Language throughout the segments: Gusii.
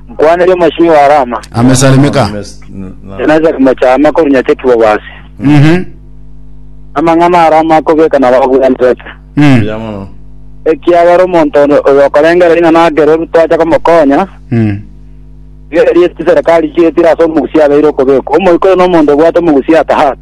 Nkwanire omochie wa Rama, amesalimeka enasari mochama kori nyachekigwa bwase. Mhm. Amang'ana a Rama akobeka na babwenerete. Mm. Yamano. Ekiagera omonto oyo okorengera ina nagere oru twacha komokonya, Mm. gerie chiserikali chietire ase omogusia abeire okobekwa. Omoika oyo nomonto obwate omogusia atahat.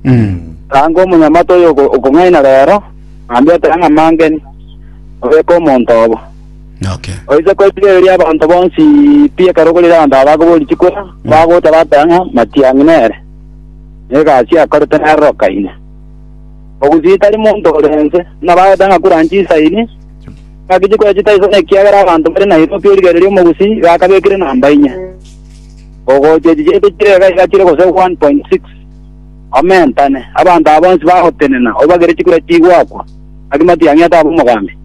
Mm. Ranga omonyamata oyo oko- okong'aina rero, ambete ang'amangeni, obeke omonto obo. Okay. Oise koitigereria abanto bonsi pi ekero okorire abanto aba bakobori chikora, bagocha bakoya ng'a matiang'i nere. Negasi akorete nerorokaine. Ogusii tari monto orense, buna bagoteba ng'a kura nchisaini, gaki chikora chitaisana ekiagera abanto bare Nairobi origereria omogusii gakabekire namba inye. Ogocha echi chiaito chire iga iga chire gose 1.6. Omentane, abanto aba bonsi bagotenena, obagere chikura chigwakwa, gaki matiang'i atabe omogambi.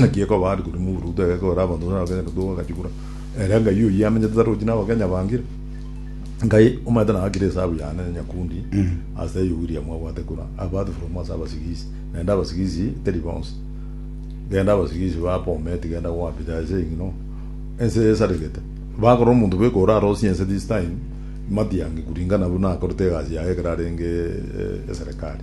Naki ekoba aria korwa moburugutu egeka ore abanto buna abakenya na togwa agachikura, ere Ngai oyio amenyete tari gochia n'abakenya bangire. Ngai omanyete nagakire esabu yane na nyakundi ase eyio William abwate kura, apart from ase abasigisi, naende abasigisi teri bonsi. Genda abasigisi ba Bomet genda kwa Peter ase eng'ino ense esaregete. Bakorora omonto bweka ore arosie ense this time, Matiangi kuringana buna akorete egasi yaye ekero arenge eserekari.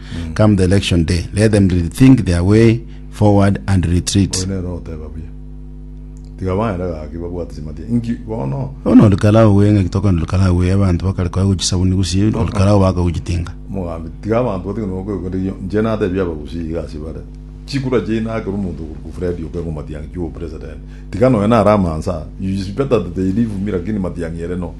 Come the election day, let them rethink their way forward and retreat. Oyo nere oteba buya. Tiga baende gaki babwate chimati. Inki bono? Bono olokarao we ng'aki tokwana olokarao we abanto bakare koya gochia chisabuni gusii olokarao baka gochia tinga. Omogambi, tiga abanto batige nokwegwera erio inche natebia abagusii iga ase bare. Chikura chiaino akera omonto okoruku Fred Okengo Matiang'i ki obopresident. Tiga nonya nare amansa. You is better that they leave me lakini Matiang'i ere no.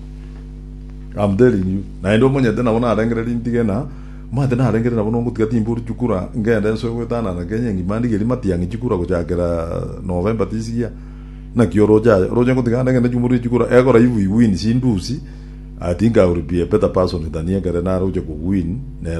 I'm telling you. Naende omonyete nabo narengere rintige na. Mate narengete nabo nogotiga timbori chikura ngende nsoe gwetanana Kenya engima ndigerie matiang'i chikura gochakera November tisigia naki oroche aye oroche ngotiga ande ngende chimborie chikura egora if we win sindusi I think I will be a better person than ekere naroche kowin nere